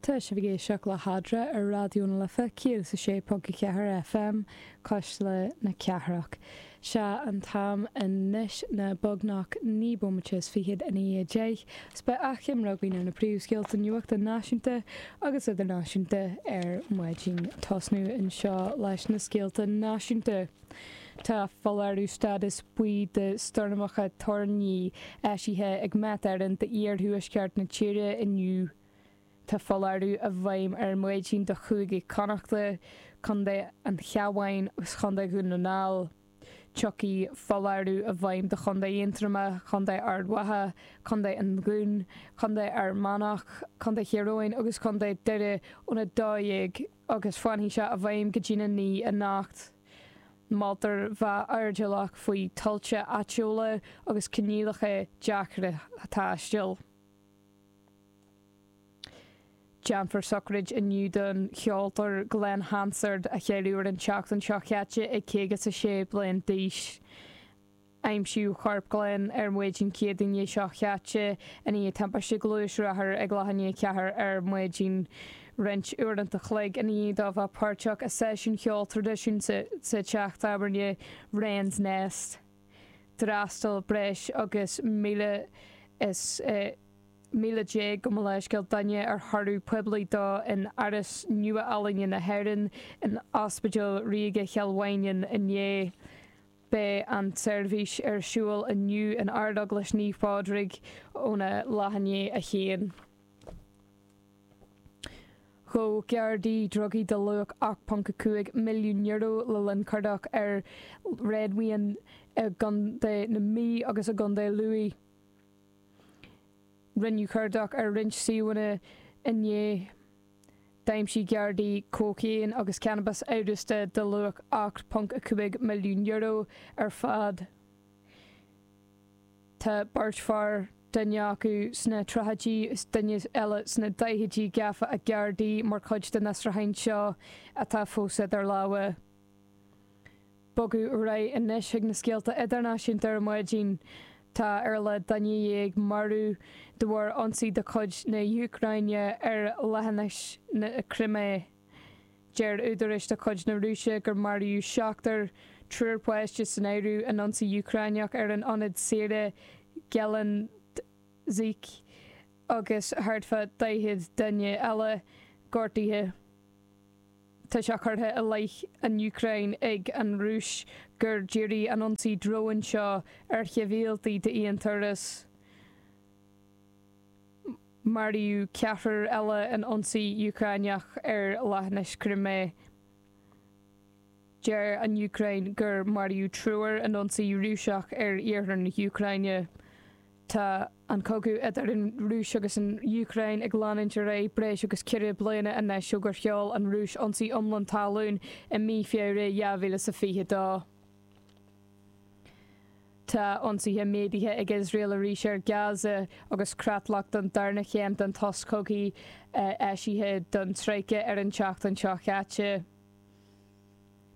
Tá sibh ag éisteacht le hEadra ar Raidió na Life 106.4 FM, Cuisle na Cathrach. Sé an t-am anois ná beagnach 9 bomaite is fichead i ndiaidh a deich, 's beidh achoimre againn ar na príomhscéalta nuachta náisiúnta agus idirnáisiúnta ar maidin. Tosnú anseo leis na scéalta náisiúnta. Tá foláireamh stádas buí do stoirmeacha toirní eisithe ag Met Éireann d'iarthuaisceart na tíre inniu. Tá foláireamh i bhfeidhm ar maidin do Chúige Connachta, Contae an Chabháin agus Chontae Dhún na nGall. Tiocfaidh foláireamh i bhfeidhm do Chontae Aontroma, Contae Ard Mhacha, Contae an Dúin, Contae Fhear Manach, Contae Thír Eoghain agus Contae Doire óna 12 agus fanfaidh sé i bhfeidhm go dtína naoi anocht. Moltar bheith airdeallach faoi thuilte áitiúla agus coinníollacha deacra taistil. Déanfar sochraid inniu don cheoltóir Glen Hansard, a cailleadh ar an tseachtain seo chaite ag caoga 's a sé bliain d'aois. Aimsíodh corp Glen ar maidin Céadaoine seo chaite i ndiaidh timpiste gluaisrothair ag leath i ndiaidh a ceathair ar maidin. Roinnt uaireanta chloig ina dhiaidh dó bheith páirteach i seisiún cheoil traidisiúnta sa teach tábhairne Wren's Nest, d'fhreastal breis agus 11,000 gabh mo leithscéal duine ar thórramh poiblí dó in Áras Nua-Ealaíne na hÉireann in Ospidéal Ríoga Chill Mhaighneann inné. Beidh an tseirbhís ar siúl inniu in Ardeaglais Naomh Phádraig óna leath i ndiaidh a haon. Ghabh Gardaí drugaí de luach €8.5 milliún le linn cuardach ar réadmhaoin i gContae na Mí agus i gContae Lú. Rinneadh cuardach ar roinnt suíomhanna inné. D'aimsigh Gardaí cócaon agus cannabas amhrasta de luach €8.5 milliún ar fad. Tá beirt fear, duine acu sna tríochaidí is duine eile sna daichidí, gafa ag Gardaí mar chuid den fhiosrúchán seo atá fós idir lámha. Bogadh ar aghaidh anois chuig na scéalta idirnáisiúnta ar maidin. Tá ar a laghad duine dhéag marbh de bharr ionsaí de chuid na hÚcráine ar Leithinis na Crimé. Deir údaráis de chuid na Rúise gur maraíodh seachtar, triúr páiste san áireamh, in ionsaí Úcráineach ar an ionad saoire Gelendzhik agus thart fá 40 duine eile gortaithe. Tá sé curtha i leith na hÚcráine ag an Rúis gur díríodh an ionsaí dróin seo ar shibhialtaigh d'aon turas. Maraíodh ceathrar eile in ionsaí Úcráineach ar Leithinis Crimé. Deir an Úcráin gur maraíodh triúr in ionsaí Rúiseach ar iarthar na hÚcráine. Tá an cogadh idir an Rúis agus an Úcráin ag leanúint ar aghaidh breis agus ceithre bliana anois ó gur sheol an Rúis ionsaí iomlán talún i mí Feabhra 2022. Tá ionsaithe méadaithe ag Iosrael arís ar Gaza agus creatlach don darna chéim den tsos cogaidh eisithe don troika ar an tseachtain seo chaite.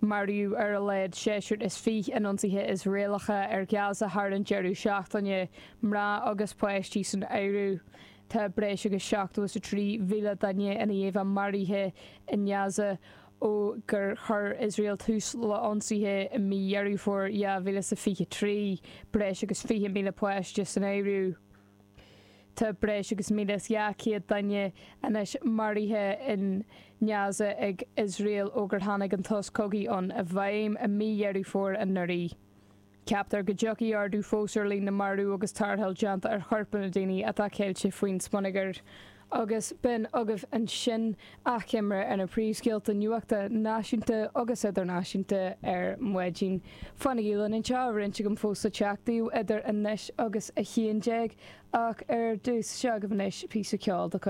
Maraíodh ar a laghad seisear is fiche in ionsaithe Iosraelacha ar Ghaza thar an deireadh seachtaine, mná agus páistí san áireamh. Tá breis agus 73,000 duine ina dhiaidh maraithe i nGaza ó gur chuir Iosrael tús le hionsaithe i mí Dheireadh Fómhair 2023, breis agus 20,000 páiste san áireamh. Tá breis agus 1,200 duine anois maraithe i nGaza ag Iosrael ó gur tháinig an tsos cogaidh ann i bhfeidhm i mí Dheireadh Fómhair anuraidh. Ceaptar go dtiocfaidh ardú fós ar líon na marbh agus tarrtháil déanta ar choirp na daoine atá ceilte faoin smionagar. agus b'in agaibh ansin achoimre ar na príomhscéalta nuachta náisiúnta agus idirnáisiúnta ar maidin. Fanaigí linn anseo, roinnt againn fós ag teacht idir anois agus a haon déag, ach ar dtús, seo agaibh anois píosa ceoil de chuid.